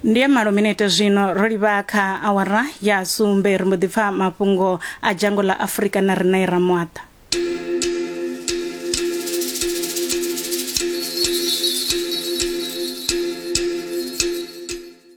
ndi ya malo minete zwino ro livha kha awara ya sumbe ri mbo ḓi pfa mafhungo a dzhango ḽa afurika na riṋe i ramwaṱa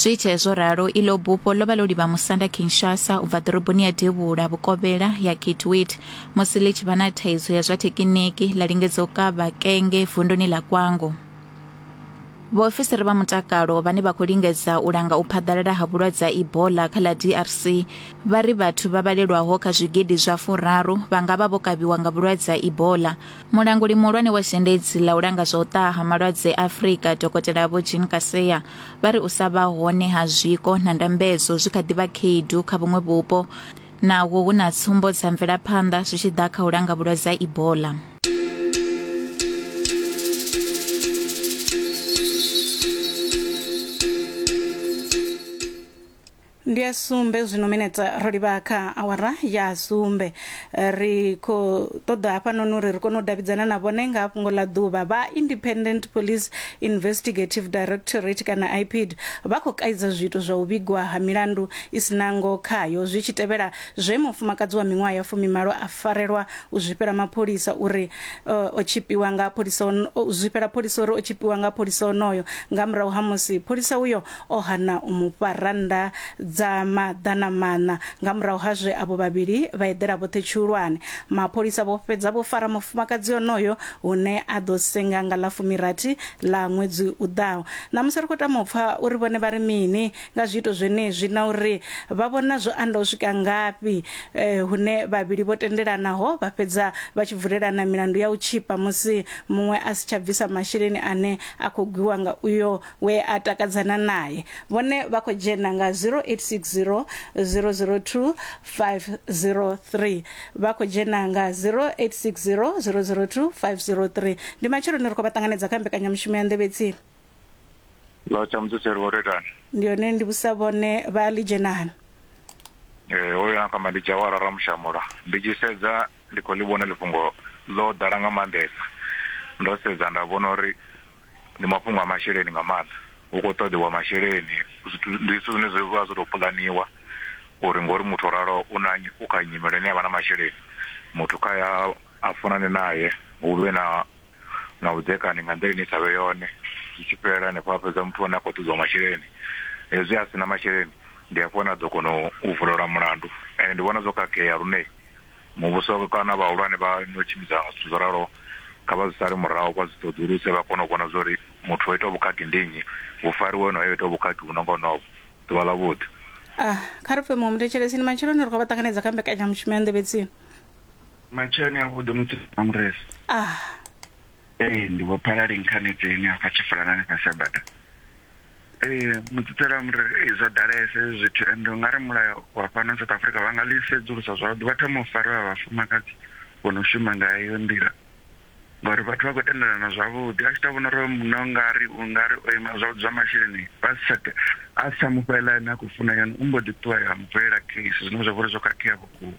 zwi itee zwo ralo iḽo bufho ḽo vha ḽo livha musanda kinshasa u bva ḓoroboni ya devhula vhukovhela ya kitwit musi ḽi tshi vha na thaidzo ya zwa thekiniki ḽa lingedza u kavha kenge vunduni ḽa kwango vhaofisiri vha mutakalo vhane vha khou lingedza u langa u phaḓalala ha vhulwadze ha ebola kha ḽa drc vha ri vhathu vha vhalelwaho kha zwigidi zwa furaru vha nga vha vho kavhiwa nga vhulwadze ha ebola mulanguli muhulwane wa zhendedzi ḽa u langa zwa u ṱaha ha malwadze a afurika dokotela vho jean kaseya vha ri u sa vha hone ha zwiko na ndambedzo zwi kha ḓi vha khaedu kha vhuṅwe vhupo naho hu na tsumbo dza mvelaphanḓa zwi tshi ḓa kha u langa vhulwadze ha ebola ndi ya sumbe zwino minetse ro livha kha awara ya sumbe ri khou ṱoḓa hafhanoni uri ri kone u davhidzana na vhone nga fhungo ḽa ḓuvha vha independent police investigative directorate kana ipid vha khou kaidza zwiito zwa u vhigwa ha milandu i si nango khayo zwi tshi tevhela zwe mufumakadzi wa miṅwaha ya fumimalo a farelwa u zwifhela mapholisa uri uh, o tshipiwa nga pholisa zwifhela pholisa uri o tshipiwa nga pholisa onoyo nga murahu ha musi pholisa uyo o hana u mu fha rannda dza maḓana maṋa. Nga murahu ha zwe avho vhavhili vha eḓela vhoṱhe tshihulwane, mapholisa vho fhedza vho fara mufumakadzi onoyo hune a ḓo senga nga ḽa fumirathi ḽa ṅwedzi u ḓaho. Ṋamusi ri khou tama u pfa uri vhone vha ri mini nga zwiito zwenezwi na uri vha vhona zwo anda u swika ngafhi hune vhavhili vho tendelanaho vha fhedza vha tshi vulelana milandu ya u tshipa musi muṅwe a si tsha bvisa masheleni ane a khou gwiwa nga uyo we a takadzana nae. Vhone vha khou dzhena nga 0860 002 503. Vha khou dzhena nga 0860 002 503. Ndi matsheloni ri khou vha ṱanganedza kha mbekanyamushumo ya nḓevhe tsini. Lo tsha mutsetseri wo retani. Ndi yone ndi vhusa vhone vha lidzhenani. Eh hoyo na kamba ndi Jawara Ramushamula. Ndi tshi sedza ndi khou ḽi vhona ḽifhungo ḽo ḓala nga maanḓesa. Ndo sedza nda vhona uri Ndi mafhungo a masheleni nga maanḓa hu kho ṱoḓiwa masheleni zwithu ndi zwithu zwine zwi vha zwo to puḽaniwa uri ngori muthu o raloho u na u kha nyimele ine avha na masheleni muthu kha ya a funane naye hu vhe na na vhudzekani nga nḓila ine i sa vhe yone zwi tshi fhela hanefho a fhedza muthu ane a kho ṱoḓiwa masheleni hezwi a sina masheleni ndi hafho hune a ḓo kona u vulelwa mulandu ende ndi vhona zwo khakhea lune Muvhuso kana vhahulwane vha no tshimbidza zwithu zwo raloho kha vha zwi sale murahu vha zwi ṱoḓuluse vha kone u vhona zwa uri muthu o itaho vhukhakhi ndi nnyi, hu fariwe onoyo o itaho vhukhakhi vhu no nga honovho. Ḓuvha ḽavhuḓi. A, Kha ri pfe muṅwe muthetshelesi. Ndi matsheloni ri khou vha ṱanganedza kha mbekanyamushumo ya Nḓevhe Tsini. Matsheloni avhuḓi mutsilu na mureza. A. Ee, ndi Vho Phalali Nkhanedzeni hafha Tshifulanani fhasi ha bada. Ee mutsitsela mri ee, zwo ḓalesa hezwi zwithu and u nga ri mulayo wa fhano south africa vha nga ḽi sedzulusa zwavhuḓi vha thoma u fariwa vhafumakadzi vho no shuma nga heyo nḓila ngauri vhathu vha khou tendelana zwavhuḓi a tshi tou vhona uri hoyo munna u nga ri u nga ri o ima zwavhuḓi zwa masheleni vha si tsha te- a si tsha mu fha heiḽa ine a khou funa yone u mbo ḓi ṱuwa ya mu vulela case zwine zwa vha uri zwo khakhea vhukuma.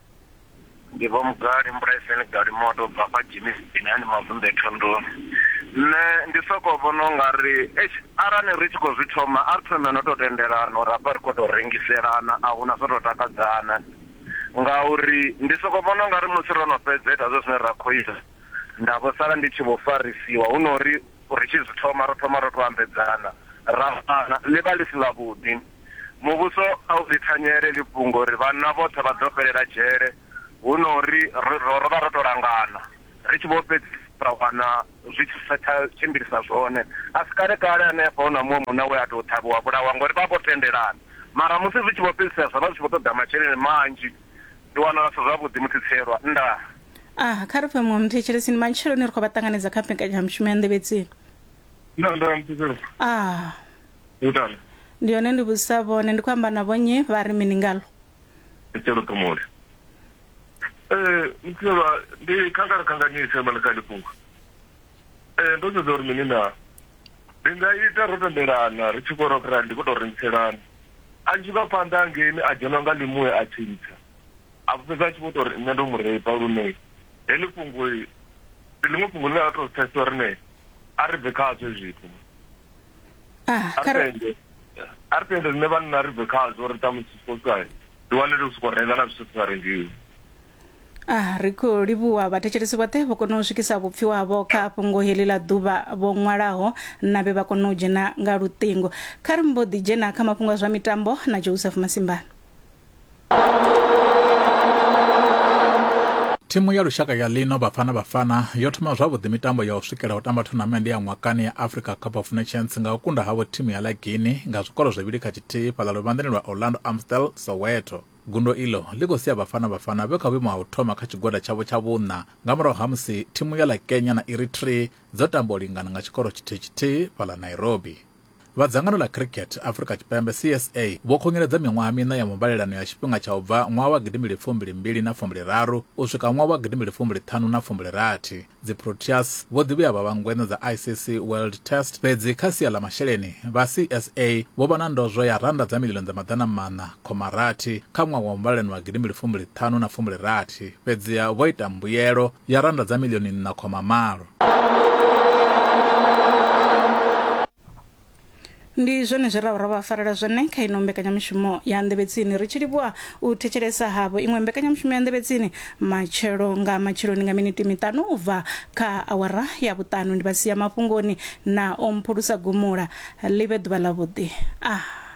ndi vho mugari mbulaiseni gali moto bva kha jimi sipini hani mavunḓe thondoni nṋe ndi soko vhona u nga ri eish arali ri tshi khou zwi thoma a ri thome no tou tendelana uri hafha ri khou tou rengiselana a huna zwo tou takadzana ngauri ndi soko vhona u nga ri musi ro no fhedza ita zwe zwine ra khou ita nda vho sala ndi tshi vho farisiwa hu no uri ri tshi zwi thoma ro thoma ro tou ambedzana ra fana ḽi vha ḽi si ḽavhuḓi Muvhuso a u ḽi thanyele heḽi fhungo uri vhanna vhoṱhe vha ḓo fhelela dzhele hu no ri ro ro ro vha ro tou langana ri tshi vho fhedzisela ra wana zwi tshi sa tsha tshimbilisa zwone. A si kale kale hanefha hu na muṅwe munna we a tou ṱhavhiwa a vhulaiwa ngori vha vha vho tendelana mara musi zwi tshi vho fhedzisela zwa vha zwi tshi vho ṱoḓa masheleni manzhi. Ndi wana zwi si zwavhuḓi musi Tshielwa. Ndaa. Ah, kha ri fhe muṅwe muthetshelesi. Ndi matsheloni ri khou vha ṱanganedza kha mbekanyamushumo ya Nḓevhetsini. Ndaa, ndaa, muthetshelesi. Ah. Ngitani? Ndi hone ndi vhudzisa vhone, ndi khou amba na vhonnyi? Vha ri mini ngaḽo? Itshelo ṱhumuli. Eh, muthiselwa, ndi khangala khanganyise mani kha ḽi fhungo. Eh, ndo sedza uri mini na? Ndi nga ita ro tendelana ri tshi khou rock ra ndi khou tou rengiselana. A tshi vha phanḓa hangeini a dzhenwa nga ḽimuya a tshintsha. A vho fhedza a tshi vho tou ri nṋe ndo mu reipa lune heḽi fhungo ndi ḽiṅwe fhungo ḽine a tou pfesesa uri ne a ri bve khazwo zwithu. ah, a ri tende rine vanna ri bve khazvo ri tamusi sikokai ri wanele u soko renga na zwithu si nga rengiwi ah, ri khou livhuwa vhathetshelesi vhoṱhe vho kona u swikisa vhupfi wavho kha fhungo heḽi ḽa ḓuvha vho ṅwalaho na vhe vha kona u dzhena nga luṱingo kha ri mbo ḓi dzhena kha mafhungo a zwa mitambo na joseph masimbana thimu ya lushaka ya ḽino vhafana vhafana yo thoma zwavhuḓi mitambo ya u swikela u tamba thonamende ya ṅwakani ya africa cup of nations nga u kunda havho thimu ya lagini nga zwikolo zwivhili kha tshithihi fhaḽa luvhanḓeni lwa orlando amstel soweto gundo iḽo ḽi khou sia vhafana vhafana vhe kha vhuimo ha u thoma kha tshigwada tshavho tsha vhuṋa nga murahu ha musi thimu ya ḽa kenya na eritrea dzo tamba u lingana nga tshikoro tshithihi tshithihi fhaḽa nairobi Vha dzangano ḽa Cricket Afrika Tshipembe CSA vho khunyeledza miṅwaha miṋa ya muvhalelano ya tshifhinga tsha u bva ṅwaha wa gidimbili fumbili mbili na fumbili raru u swika ṅwaha wa gidimbili fumbili ṱhanu na fumbili rathi. Dzi Proteas vho ḓi vhuya vha vha ngweṋa dza ICC World Test fhedzi kha sia ḽa masheleni vha CSA vho vha na ndozwo ya rannda dza miḽioni dza maḓana maṋa khoma rathi kha ṅwaha wa muvhalelano wa gidimbili fumbili ṱhanu na fumbili rathi fhedziha vho ita mbuyelo ya rannda dza miḽioni nṋa khoma malo. ndi zwone zwe ra vha ra vha farela zwone kha ino mbekanyamushumo ya nḓevhetsini ri tshi livhuwa u thetshelesa havho iṅwe mbekanyamushumo ya nḓevhetsini matshelo nga matsheloni nga miniti miṱanu u bva kha awara ya vhuṱanu ndi vha sia mafhungoni na o mphulusa gumula ḽi vhe ḓuvha ḽavhuḓi ah